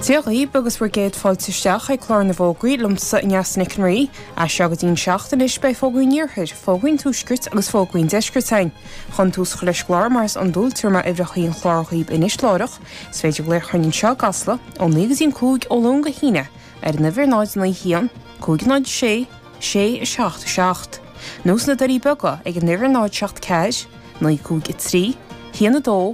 Dé dhaoib agus bhur gcéad fáilte isteach ag Clár na bhFógraí liomsa Aneas Nic an Rí. As seo go dtí'n seacht anois beidh fógraí an iarthair, fógraí an tuaiscirt agus fógraí an deiscirt againn. Chun tús a chur leis an gclár mar is iondúil tabharfaidh mé uimhreacha an chláir dhaoib anois láithreach, is féidir glaoch chugainn anseo i gCasla ó naoi go dtí'n cúig ó Luan go hAoine ar an uimhir 091 506 677 nó sna Doirí Beaga ag an uimhir 074 953 12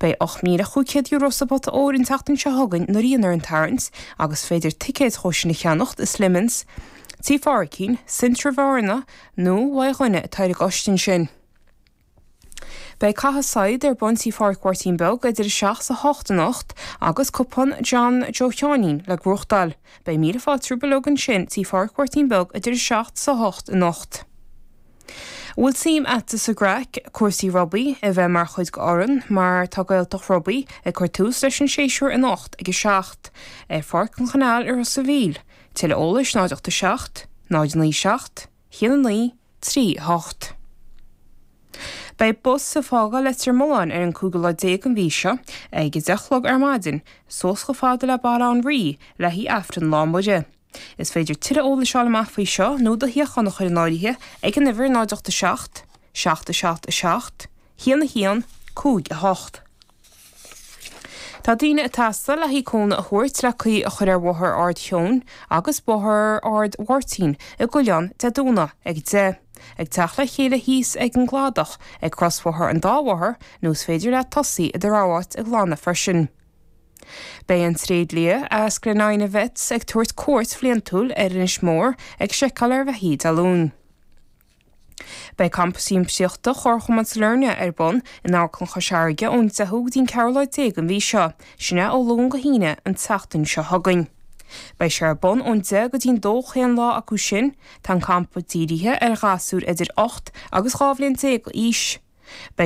Beidh €8,500 sa bpota óir an tseachtain seo chugainn nuair a dhéanfar an tarraingt agus is féidir ticéid dhó sin a cheannacht i Slemons, Tí Pháraicín, Centra Bhearna nó uaidh dhuine ar bith ar an gcoiste sin. Beidh Caith Saighead ar bun Tí Phádraic Mháirtín Beag idir 7 's 8 anocht agus cupán John Joe Sheáinín le gnóthachtáil. Beidh míle fáilte romhaibh uilig ansin Tí Phádraic Mháirtín Beag idir 7 's 8 anocht. An bhfuil suim agatsa sa gcraic, cúrsaí rugbaí, a bheith mar chuid d'fhoireann, mar tá Gaeltacht Rugbaí ag cur tús leis an séasúr anocht ag a seacht ar Pháirc an Choineáil i Ros an Mhíl, tuilleadh eolais 087 097 19 38. Beidh bus ag fágáil Leitir Mealláin ar an 15 lá an mhí seo, ag a deich a chlog ar maidin, suas chomh fada le Baile Átha an Rí, le haghaidh Aifreann Lá Muire. Is féidir tuilleadh eolais a fháil amach faoi seo nó do shuíochán a chur in áirithe ag an uimhir 0 8 7 7 7 7 1 1 5 8. Tá daoine ag teastáil le haghaidh cúnamh a thabhairt le caoi a chur ar Bhóthar Ard Sheoin agus Bóthar Ard Mháirtín i gCuilleán Dé Domhnaigh ag 10:00, ag teacht le chéile thíos ag an gcladach ag crosbhóthar an dá bhóthar nó is féidir leat tosaí i do rogha áit ag glanadh freisin. Beidh an tréidlia as Glenina Vets ag tabhairt cuairt bhliantúil ar Inis Mór ag seiceáil ar bheithígh Dé Luain. Beidh campa siamsaíochta Chomharchumann Sailearna ar bun in Amharclann Chois Fharraige ón 10ú go dtí an 14 lá den mhí seo, sin é ó Luan go hAoine an tseachtain seo chugainn. Beidh sé ar bun ón 10 go dtí an 2 chaon lá acu sin. Tá an campa dírithe ar ghasúir idir 8 agus 12 bhliain d'aois.